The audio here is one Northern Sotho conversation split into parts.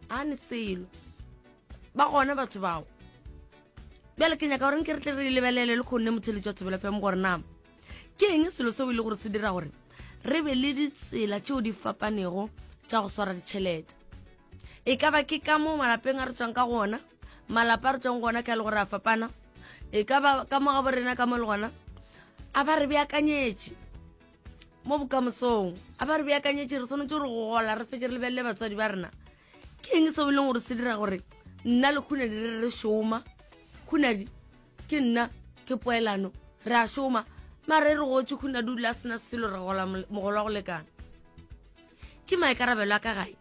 a ne selo ba gona batho bao bjale ke nyaka gore nke re tle re lebelele le kgonne motheletši wa thobela fm gore nama ke eng selo seo e le gore se dira gore re be le ditsela tšeo di fapanego tša go swara ditšhelete e ka ba ke ka mo malapeng a re tswang ka gona malapa a re tswang gona ka le gore a fapana e ka ba ka mo ga borena ka mo le gona a ba re beakanyetše mo bokamosong a ba re beakanyetse re tshwanetse gore go gola re fetse re lebelele batswadi ba rena ke eng seo e leng gore se dira gore nna le khunadi re re šoma khunadi ke nna ke poelano re a šoma mare re gotse khunadi o dula a sena selo re gola mogolo wa go lekana ke maikarabelo a ka gae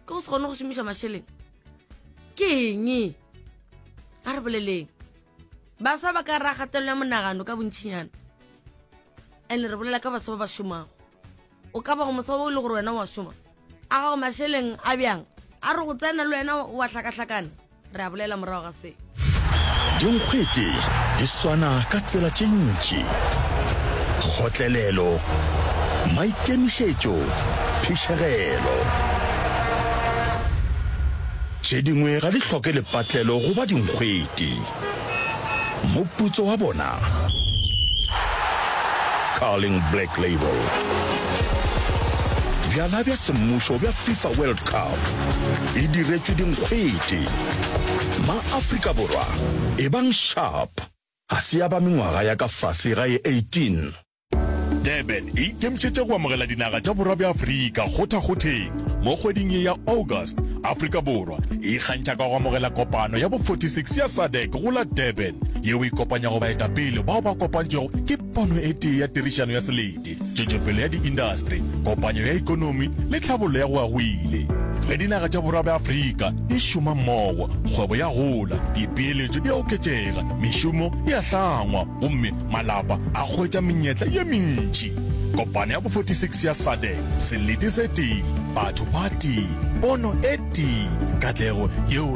ke go se kgone go šomiša mašeleng ke eng a re boleleng baswa ba ka ra gatelelo ya monagano ka bontšhinyana and re bolela ka baswa ba ba šomago o ka ba go moswa o e le gore wena wa šoma a gago mašeleng a bjang a re go tsena le wena wa hlakahlakana re a bolela morago ga se dinkgwete di swana ka tsela tše ntši kgotlelelo maikemišetšo phišegelo Tše dingwe ga di hloke lepatlelo goba dinkgwete. Moputso wa bona, Carling Black Label. Bjala bja semmušo bja FIFA World Cup e diretšwe dinkgwete. Ma-Afrika Borwa, ebang sharp, ga se ya ba mengwaga ya ka fase ga e 18. Durban e ikemišetše go amogela dinaga tša borwa bja Afrika kgothakgotheng. Mo kgweding ye ya August, Afrika Borwa e ikgantšha ka go amogela kopano ya bo 46 ya SADC go la Durban, yeo e kopanyago baetapele bao ba kopantšwego ke pono e tee ya tirišano ya selete, tšwetšopele ya diindastri, kopanyo ya ekonomi le tlhabollo ya go agwile. Ge dinaga tša borwa bja Afrika di šoma mmogo, kgwebo ya gola, dipeeletšo di a oketšega, mešomo e a hlangwa gomme Malapa a hwetša menyetla ye mentši. Kopano ya bo 46 ya SADEC, selete se tee, batho ba tee, pono e tee, katlego yeo